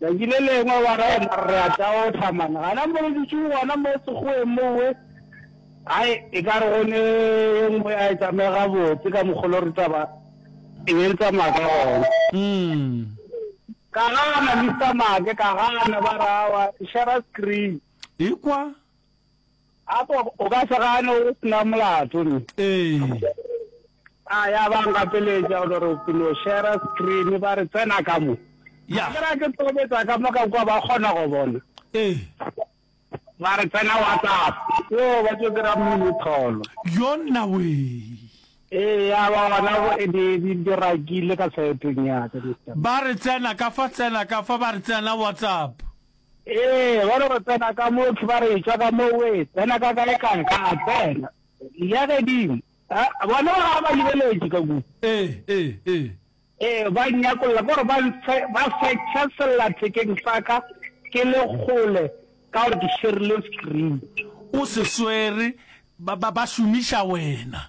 Tšatši le lengwe wa re, Mara re a taopa, man. Gana mo re dutše gona mo sekgoweng mowe, hai, e ka re go ne ye nngwe ya e tsamaya gabotse ka mokgwa lo re taba e be e tsamaya ka gona. Ka gana, Mister Maake, ka gana, ba re, Aowa, e share-a screen. Ekwa. Apo o ka se gane o se na molato ne. Ee. A ya ba ngapeletša o re ke no share screen ba re tsena ka mo. Ya. Ke ra ke tobetsa ka mo ka kwa ba kgona go bona. Ee. Ba re tsena WhatsApp. Yo ba tšo dira mmele tholo. Yona we. Ee ya ba bona go e di di dirakile ka saeteng ya ka. Ba re tsena ka fa tsena ka fa ba re tsena WhatsApp. Ee, ba re go tsena ka motho, ba re etšwa ka mo oe tsena ka kae kae, ka a tsena. Ya gedimo, bona ba ga ba lebeletše ka ku. Ee, ee, ee. Ee, ba nyakolla, gore ba ntshe, ba fetša sellathekeng sa ka ke le kgole, ka gore ke šerile screen. O se swere, ba, ba, ba šomiša wena.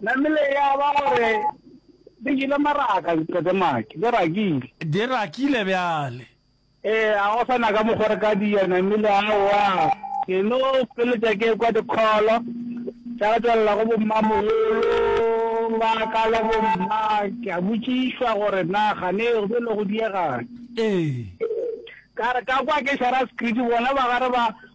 Namile ya ba gore di jele maraka diqetemaki, di rakile. Di rakile bjale. Ee, ga go sa na ka mokgwa re ka di ja, Namile, aowa. Ke no feletša ke ekwa dikholo tša go tšwelela go bommamogolo ba ka le bomma, ke a botšišwa gore na kgane go be le go diegane. Ee. Ka re ka kwa ke šara sekhriti bona ba ga re ba.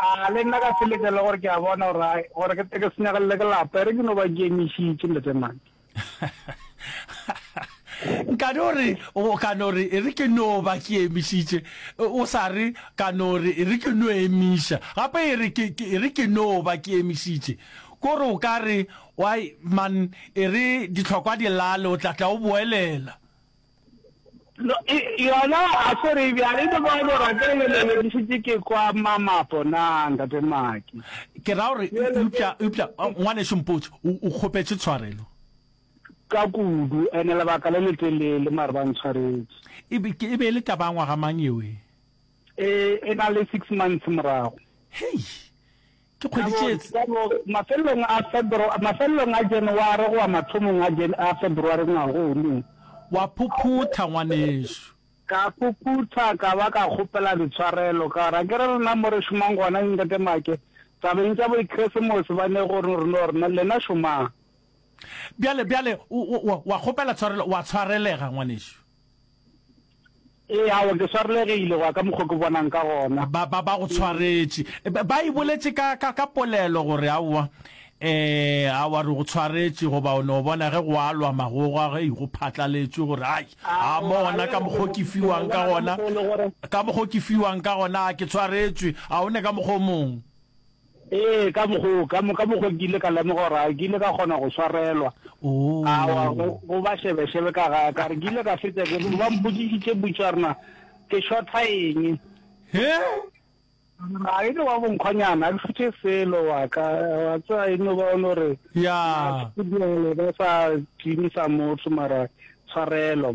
A le nna ka seleka le gore ke a bona gore ai gore ke teke senyagalele ke lapa ere ke no ba ke emišitše ntate maki. ka no re o ka no re ere ke no ba ke emišitše o sa re ka no re ere ke no emiša gape ere ke ere ke no ba ke emišitše ko re o ka re why man ere ditlhokwa dilale o tla tla o boelela No, e, yona a ko re bjang e le ba go rate le leledišitše ke kwa mamapo na ntate maki ke ra gore e- eupša eupša oh, ngwaneso mpotse o o kgopetše tshwarelo ka kudu ene lebaka le letelele mare ba ntshwaretse e be ke- e be e le taba ya ngwaga mang eo e e e na le six months morago hei Ke kgwedi tše tse. Ka bo mafelelong a Febru, mafelelong a January goba mathomong a Jan, a February ngwaga o nong. Wa phuphutha, ngwanešu. Ka phuphutha ka ba ka kgopela ditshwarelo, ka gore a ke re rena mo re šomang gona, Ntate Maake, tabeng tša Boikresemose ba ne go re no rena, lena šomang. Bjale, bjale, o, o, o, wa kgopela tshwarelo, wa tshwarelega, ngwanešu. ee awa ke swarelegile go ya ka mokgwa ke bonang ka gona ba ba ba go tshwaretše e, ba ba e boletše ka ka ka polelo gore aowa eh awa re go tshwaretše goba o ne o bona ge go alwa magoga ge go phatlaletšwe gore ai a mo gona ka mokgwa o ke fiwang ka gona ka mokgwa o ke fiwang ka gona a ke tshwaretšwe a o ne ka mokgwa o mongwe Ee, ka mokgwa o, ka mo, ka mokgwa ke ile ka lemoga gore a ke ile ka kgona go swarelwa. Awa, go, Oh. go ba šebešebe ka ga ka re ke ile ka fetša ke ba mpotšišitše potšo ya rena ke šotha eng. He? A e le wa bonkgonyana, a ke šothe selo wa ka, wa tseba e no ba o no re Ya. ba sa timisa motho mara tshwarelo.